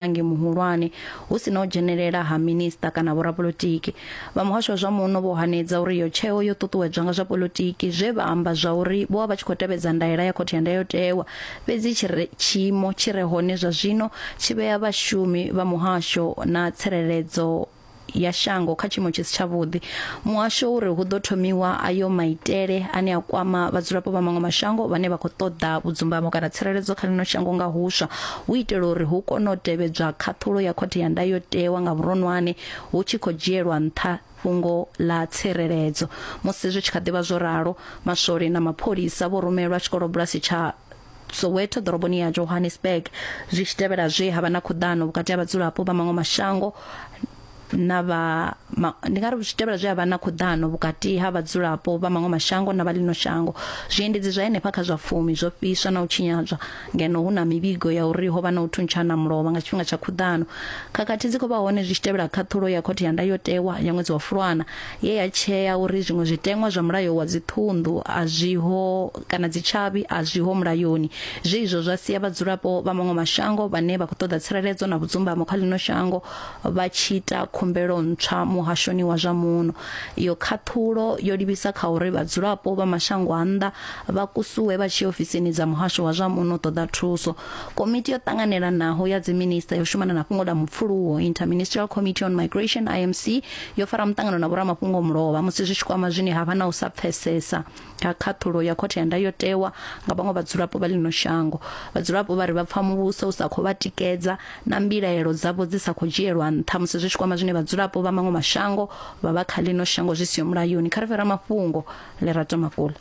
mulangi muhulwane hu si na u dzhenelela ha minista kana vhorapolotiki vha muhasho wa zwa muno vho hanedza uri iyo tsheo yo ṱuṱuwedzwa nga zwa polotiki zwe vha amba zwa uri vho vha vha tshi khou tevhedza ndaela ya khothe ya ndayotewa fhedzi tshi re- tshiimo tshi re hone zwa zwino tshi vhea vhashumi vha muhasho na tsireledzo ya shango kha tshiimo tshi si tshavhuḓi muhasho uri hu ḓo thomiwa ayo maitele ane a kwama vhadzulapo vha maṅwe mashango vhane vha khou ṱoḓa vhudzumbamo kana tsireledzo kha ḽino shango nga huswa hu itela uri hu kone u tevhedzwa khaṱhulo ya khothe ya ndayotewa nga vhuronwane hu tshi khou dzhielwa nṱha fhungo ḽa tsireledzo musi zwi tshi kha ḓivha zwo ralo maswole na mapholisa vho rumelwa tshikolobulasi tsha Soweto ḓoroboni ya Johannesburg zwi tshi tevhela zwe ha vha na khuḓano vhukati ha vhadzulapo vha maṅwe mashango na vha ma, ndi nga ri zwi tevhela zwe ha vha na khuḓano vhukati ha vhadzulapo vha maṅwe mashango na vha ḽino shango zwiendedzi zwa henefha kha zwa fumi zwo fhiswa na u tshinyadzwa ngeno hu na mivhigo ya uri ho vha na u thuntshana mulovha nga tshifhinga tsha khuḓano khakhathi dzi khou vha hone zwi tshi tevhela khaṱhulo ya khothe ya ndayotewa ya ṅwedzi wa fulwana ye ya tshea uri zwiṅwe zwiteṅwa zwa mulayo wa dziṱhunḓu a zwiho kana dzitshavhi a zwiho mulayoni zwe izwo zwa sia vhadzulapo vha maṅwe mashango vhane vha khou ṱoḓa tsireledzo na vhudzumbamo kha ḽino shango vha tshi ita khumbelo ntswa muhashoni wa zwa muno iyo khaṱhulo yo livhisa kha uri vhadzulapo vha mashango a nnḓa vha kusuwe vha tshi ofisini dza muhasho wa zwa muno ṱoḓa thuso komiti yo ṱanganelanaho ya dziminista yo shumana na fhungo ḽa mupfuluwo interministerial committee on migration imc yo fara muṱangano na vhoramafhungo mulovha musi zwi tshi kwama zwine ha vha na u sa pfesesa kha khaṱhulo ya khothe ya ndayotewa nga vhaṅwe vhadzulapo vha ḽino shango vhadzulapo vha ri vha pfa muvhuso u sa khou vha tikedza na mbilaelo dzavho dzi sa khou dzhielwa nṱha musi zwi tshi kwama zwine vhadzulapo vha maṅwe mashango vha vha kha ḽino shango zwi siho mulayoni kha ri fhira mafhungo lerato mafula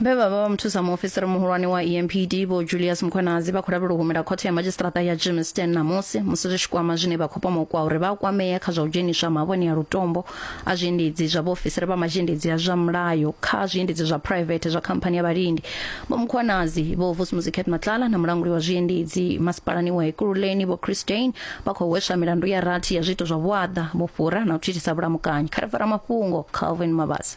vhe vha vha vha muthusa muofisiri muhulwane wa empd vho julius mkhwanazi vha khou lavhelwa u humela khothe ya madzhisiṱiraṱa ya germiston ṋamusi musi zwi tshi kwama zwine vha khou pomokwa uri vha kwamea kha zwa u dzheniswa mavhoni a lutombo a zwiendedzi zwa vhaofisiri vha mazhendedzi a zwa mulayo kha zwiendedzi zwa private zwa khamphani ya vhalindi vho mkhwanazi vho vusmuzi cat matlala na mulanguli wa zwiendedzi masipalani wa ekululeni vho christain vha khou hweswa milandu ya rathi ya zwiito zwa vhuaḓa vhufhura na u thithisa vhulamukanyi kha ri fara mafhungo calvin mabasa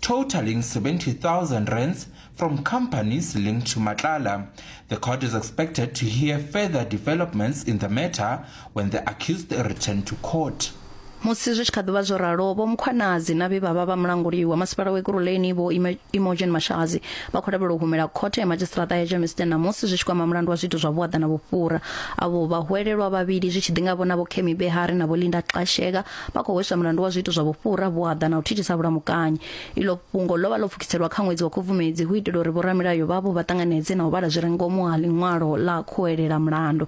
totaling 70,000 rands from companies linked to Matlala. The court is expected to hear further developments in the matter when the accused return to court. musi zwi tshi kha ḓivha zwo ralo vho mukhwanazi na vhe vha vha vha mulanguli wa masipala wa ekuruleni vho imogen mashazi vha khou lavhelwa u humela khothe ya madzhisiṱiraṱa ya germiston namusi zwi tshi kwama mulandu wa zwiito zwa vhuaḓa na vhufhura avho vhahwelelwa vhavhili zwi tshi ḓi nga vhona vho kemi behari na vho linda xasheka vha khou hweswa mulandu wa zwiito zwa vhufhura vhuaḓa na u thithisa vhulamukanyi iḽo fhungo ḽo vha ḽo pfukiselwa kha ṅwedzi wa khubvumedzi hu itela uri vhoramilayo vhavho vha ṱanganedze na u vhala zwi re ngomu ha ḽiṅwalo ḽa khuwelela mulandu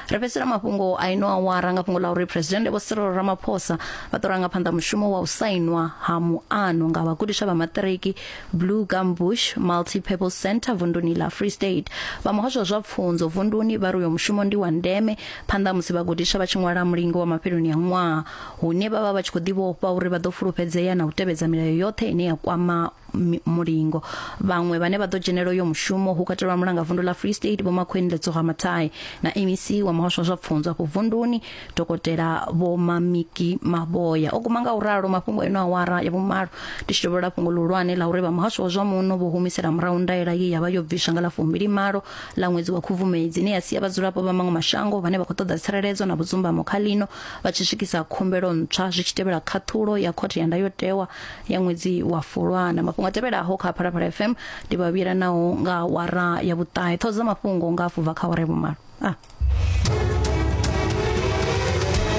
ri fhedzisela mafhungo a ino awara nga fhungo ḽa uri presidennde vho sirolo ramaphosa vha ḓo ranga phanḓa mushumo wa u sainwa ha muano nga vhagudiswa vha maṱiriki blue gumbush multipurpose center vunduni la free state vha muhasho wa zwa pfunzo vunduni vha ri uyo mushumo ndi wa ndeme phanḓa ha musi vhagudiswa vha tshi ṅwala mulingo wa mafheloni a ṅwaha hune vha vha vha tshi khou ḓivhofha uri vha ḓo fulufhedzea na u tevhedza milayo yoṱhe ine ya kwama mi- mulingo vhaṅwe vhane vha ḓo dzhenela uyo mushumo hu katelwa mulanga vundu la free state vho makhweni letsoga mathai na mec wa muhasho wa zwa pfunzo afho vunduni dokotela vho mamiki mavhoya o guma nga u ralo mafhungo eno awara ya vhumalo ndi tshi dovholola fhungo ḽihulwane ḽa uri vha muhasho wa zwa muno vho humisela murahu ndaela ye ya vha yo bviswa nga ḽa fumbili malo ḽa ṅwedzi wa khubvumedzi ine ya sia vhadzulapo vha maṅwe mashango vhane vha khou ṱoḓa tsireledzo na vhudzumbamo kha ḽino vha tshi swikisa khumbelo ntswa zwi tshi tevhela khaṱhulo ya khothe ya ndayotewa ya ṅwedzi wa fulwana mafhungo a tevhelaho kha phalaphala fm ndi vha vhila naho nga wara ya vhuṱahe ṱhoho dza mafhungo nga afho bva kha wara ya vhumalo ah.